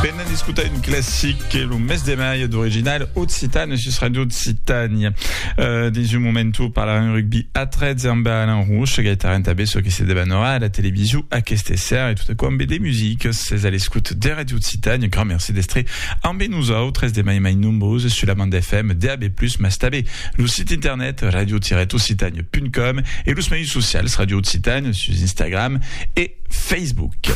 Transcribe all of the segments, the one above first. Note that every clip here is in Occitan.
Venen d'escotar un classic que lo mes de mai d'original occitan e sus Radio Occitània. Uh, dins un moment tu parlarem rugby a 13 amb Alain Rouche, gaitaran també ce que se debanora a la television aquesta ser e tot aquò amb de music. Ses a l'escoute de Radio Occitània, grand merci d'estre amb nosaltres de mai mai nombreux sur la bande FM DAB+, mas també lo site internet radio-occitània.com e los meius socials Radio Occitània sus Instagram e Facebook.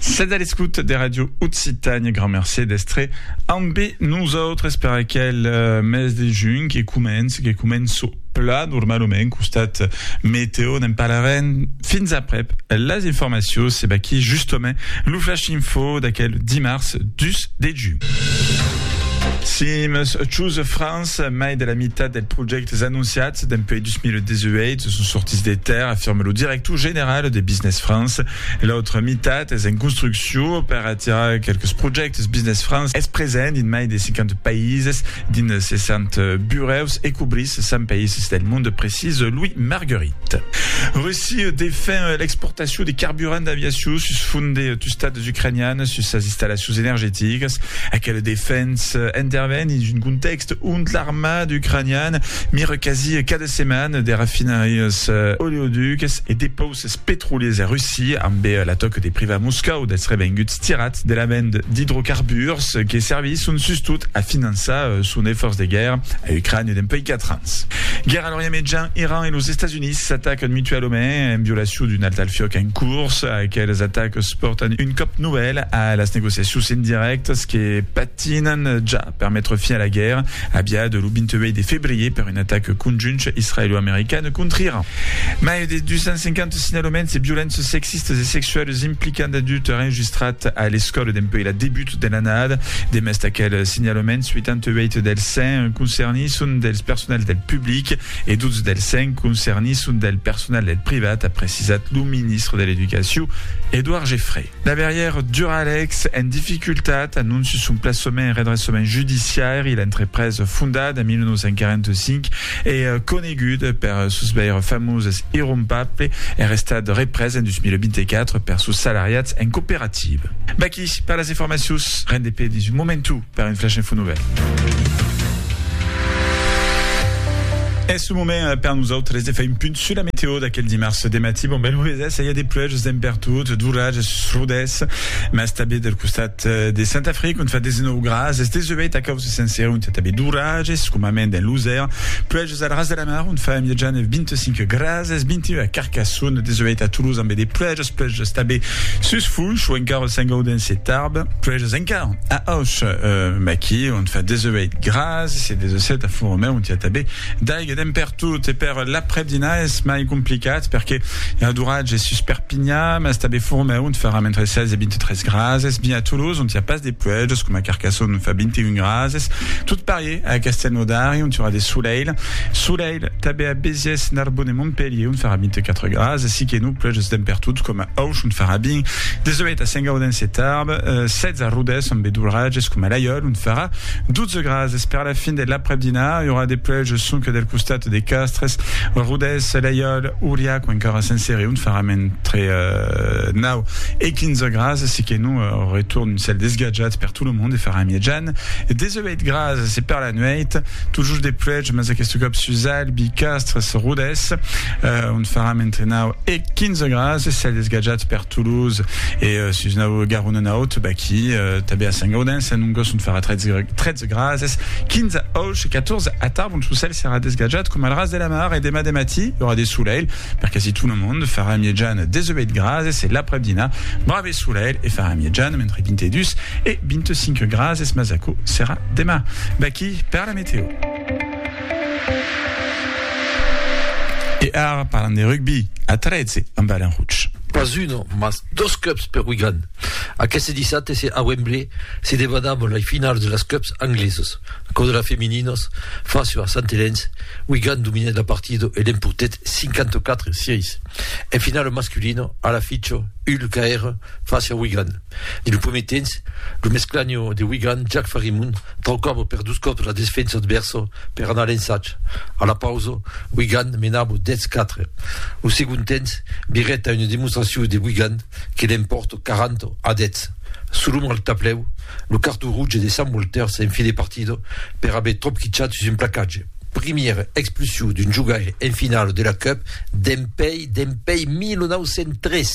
Sètz a l'escouta de Ràdio Occitània. Grand mercé d'èstre ambe nosautres per aquel mes de junh que comença, que començo plan normalament. Costat meteo n'en parlarem fins aprèp las informacions. Se baquí justament lo flash info d'aquel dimars 2 de junh. Sims Choose France, mai de la mitat dels projèctes anonciats dempuèi 2018 son sortits de tèrra, afirma lo director general de Business France. E l'autra mitat es en construccion per atirar quelques projèctes Business France es present dins mai de 50 païses dins 60 burèus e cobrís 100 païses del monde, precís Louis Marguerit. Russia defen l'exportacion de carburant d'aviacion sus font de tustats ucranianes sus sas installacions energeticas. Aquela defensa interven dins un contèxt ont l'armada ucraniana mira quasi cada setmana de rafinarias oleoducas e depauses. Es petroliers en Russia, ambe la tòca de privar Moscòu dels revenguts tirats de la vend d'idrocarburs que servisson sustot a finançar son efòrç de guèrra a Ucrània dempuèi 4 ans. Guèrra a l'Orient Mejan, Iran e los Estats Units s'atacan mutualament en violacion d'un alt al fiòc en curs. Aqueles atacs pòrtan un còp novèl a las negociacions indirèctas que patinan ja. per metre fin a la guèrra aviada lo 28 de febrier per un atac conjunt israelo-american còntra Iran. Mai de 250 signalaments de violences sexistas e sexualas implicant d'adultes enregistrats a l'escòla dempuèi la debut de l'annada. Demest d'aqueles signalaments, 88 dels 100 concernits son dels personals del public e 12 dels 100 concernits son del personal del privat, a precisat lo ministre de l'Educacion, Edouard Geffray. Laberièr Duralex en dificultat, anonci son plaçament en redressament judiciaire, l'entreprés fondat en 1945 e conegut per sos veires famoses irrompable es restat représ en 2024 per sos salariats en cooperativa. Vaquí per las informacions, rendez-pe dins un momentu. Per un flash info novèl. Es lo moment per nosautres de far un punt sus la meteo d'aquel dimars de matí. Bon, bèl hovedès, i a de pluèges dempertot, d'oratges, srudèths, mas tanben del costat de Sant Afric, ont fa 19 grads, es deseuèit a causa sencèra, ont i a tanben d'oratges, comament en Losèr, pluèges al ras de la mar, ont fa en miatjana 25 grads, es 21 a Carcassonne, deseuèit a Toulouse, ambe de pluèges. Puèi estabe sus fuch o encara sens gauden se tarb. Puèi es encara a auch maqui ont fa 18 gras e se desocèt a Fouromeu ont i a tabe d'aiga d'en pertot e per l'aprèp dinar es mai complicat perque era d'oratge es sus Perpinha mas estabe Fouromeu ont farà mentre 16 e 23 gras es bien a Toulouse ont i a pas de puèjos coma Carcassonne ont fa 21 gras es tot parier a Castelnaudari ont i aurà de solelh Tanben a Béziers, Narbonne e Montpelhier on farà 24 grads, aicí que non pleuges damb pertot, coma Auch on farà 20, 18 a Saint-Gaudens e Tarbes, 16 a Rodés ambe d'orrages, coma Laiòl on farà 12 grads. Es per la fin de l'aprèp-dinar, i aurà de pleuges sonque del costat de Castres, Rodés, Laiòl, Auriac o encara Saint-Céré on farà entre 9 e 15 grads, aicí que non retorn un cèl desgatjat per tot lo mond e farà mièjan 18. Pèit gras, se per la nuèit, totjorn de pluèja, mas aqueste còp sus Albi, Castres, Rodés, ont faram entre 9 e 15 gras, cèl desgatjat per Toulouse e sus nau Garona naut, baquí, tanben a Sant Gaudens, a Nongos, ont farà 13 grases, 15 auch e 14 a Tarbon, sus cèl serà desgatjat coma al ras de la mar e demà de matí i aurà de solelh, Perque si tona monde farà miejan deseubèit grases e l'aprèp dinar brave solèl e farà miejan mentre 22 e 25 grases mas aquò serà demà. Vaquí per la meteo. E ara parlam de rugbi a 13 amb Alain Rouch. Pas un mas dos cups per Wigan. Aqueste dissabte a Wembley se debanam las finalas de las cups angleses. Aquò de las femininas face a Sant Elenç, Wigan dominèt la partida e l'empotèt 54 sièis. En finala masculina, a la ficha, Hull caèra face a Wigan. Dins lo primièr temps, lo mesclanha de Wigan, Jack Farimund, traucava per dos còps la desfensa advèrsa per anar a l'ensatge. A la pausa, Wigan menava 10-4. Lo segond temps virèt a una demonstracion de Wigan que l'empòrta 40 a 10. Solon al tablèu, lo carton roge de Sam Walters en fin de partida per aver tropquichat sus un placatge. Primièra expulsion d'un jogaire en finala de la Cup dempèi dempèi 1903.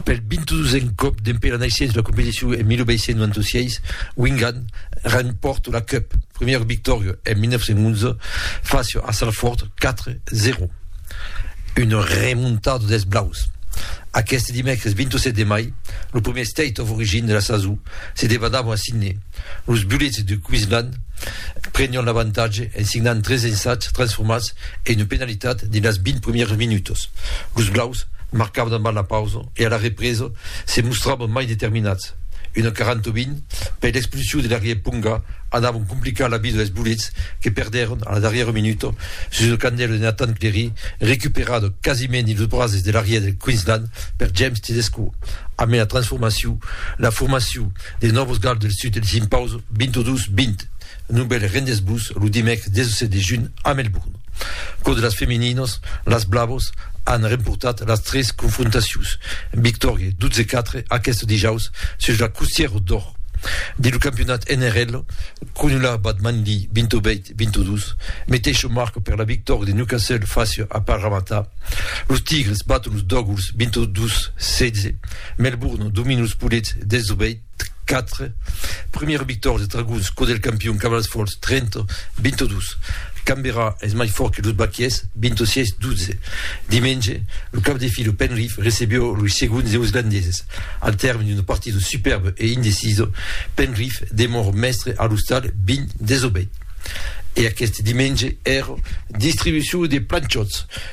Pel 22n còp dempèi la naissença de la competicion en 1896, Wingan rempòrta la Cup, primièra victòria en 1911 fàcia a Salford 4-0. Una remontada dels blaus. Aqueste dimècres 27 de mai, lo primièr State of Origin de la sason se debadava a Sydney. Los Bullets de Queensland prenián l'avantatge en signant tres ensats transformats e una penalitat dins las 20 primièras minutas. Los blaus marcavan abans la pausa e a la represa se mostravan mai determinats. Una quarantaubin per l'expulsion de l'arrièr Ponga anavon complicar la vida dels bolets que perdèron a la darrièra minuta sus una candèla de Nathan Clery recuperada quasiment dins los brases de l'arrièr del Queensland per James Tedesco. A mai la transformacion, la formacion de Nòvos Gals del Sud els impausa 22-20. Non bèl rendètz-vos lo dimècres 17 de junh a Melbourne. Lo de las femininas, las Blavas an remportat las tres confrontacions, victòria 12-4 aqueste dijaus sus la Costière d'Or. Dins lo campionat NRL, Cronulla bat Manly 28-22, meteisha marca per la victòria de Newcastle fàcia a Parramatta. Los Tigres baton los Dogwalls 22-16, Melbourne domina los Poulets 18, 4, Premiera victòria de Tragons cò del campion Cavalas Fòrts, 30, 22. Canberra es mai fòrt que los Baquiers, 26, 12. Dimenge, lo cap de fila Penrith recebió los segons Neuslandeses. Al tèrme d'una partida supèrba e indecisa, Penrith demòra mèstre a l'ostal, 20, 18. E aqueste dimenge èra. Distribucion de planchòts.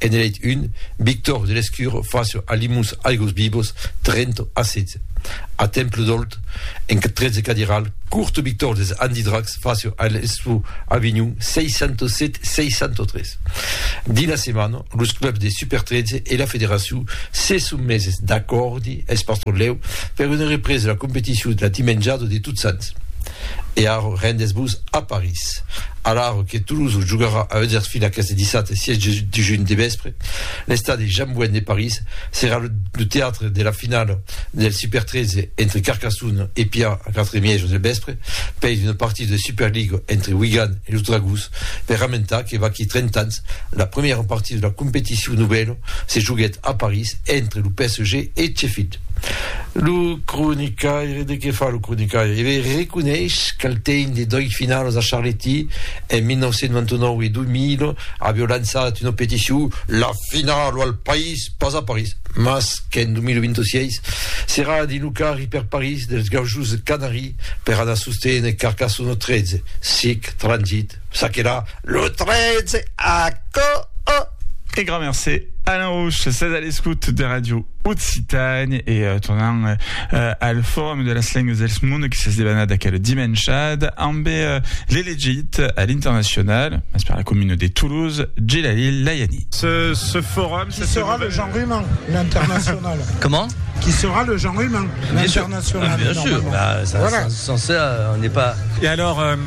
En elèit un, Victor de Lescur facio alimus aigos vivos Trento a setze. A Temple d'Olt, en tretze cadiral, Curto Victor des Andidracs facio a l'Estu Avinhon 607 603. Dins la setmana, los clubs de Super 13 e la federacion se son meses d'acòrdi, es pas tròp lèu, per una represa de la competicion la dimenjada de Totsants. E arro rendes-vos a París. Alara que Toulouse jogarà a Huddersfield aqueste dissabte 6 de junh de vèspre, l'estadi Jean Bouin de París serà lo teatre de la finala del Super 13 entre Carcassonne e Pià a 4 e mièja del vèspre, pei d'una partida de Superliga entre Wigan e los Dragons per ramentar que vaquí 30 ans la primièra partida de la competicion novèla se joguèt a París entre lo PSG e Sheffield. Lo cronicaire, de qué fa lo cronicaire? Eve reconeish qu'al tein de dòit finalos a Charletti en 1999 e 2000 aveu lançat una peticion La finalo al País, pas a París, mas qu'en 2026 serà dins lo carri per París dels Gaujos Canari per anar sosténer Carcassona 13, sic, transit. Ça qu'era lo 13 agost. E grand mercé Alain Rouch, sètz a l'escout de Radio Occitània e tornam al Forum de las Lengas dels Mondes que s'es debanat aquel dimenshada ambe l'elegit a l'internacional, mas per la comuna de Toulouse, Djelalil Layani. Ce forum, Qui sera le Jean Ruman, l'international? Comment? Qui sera le Jean Ruman, l'international? Bien sûr, bien sûr, ça, voilà. Sans, sans ça, on n'est pas... Et alors... Euh...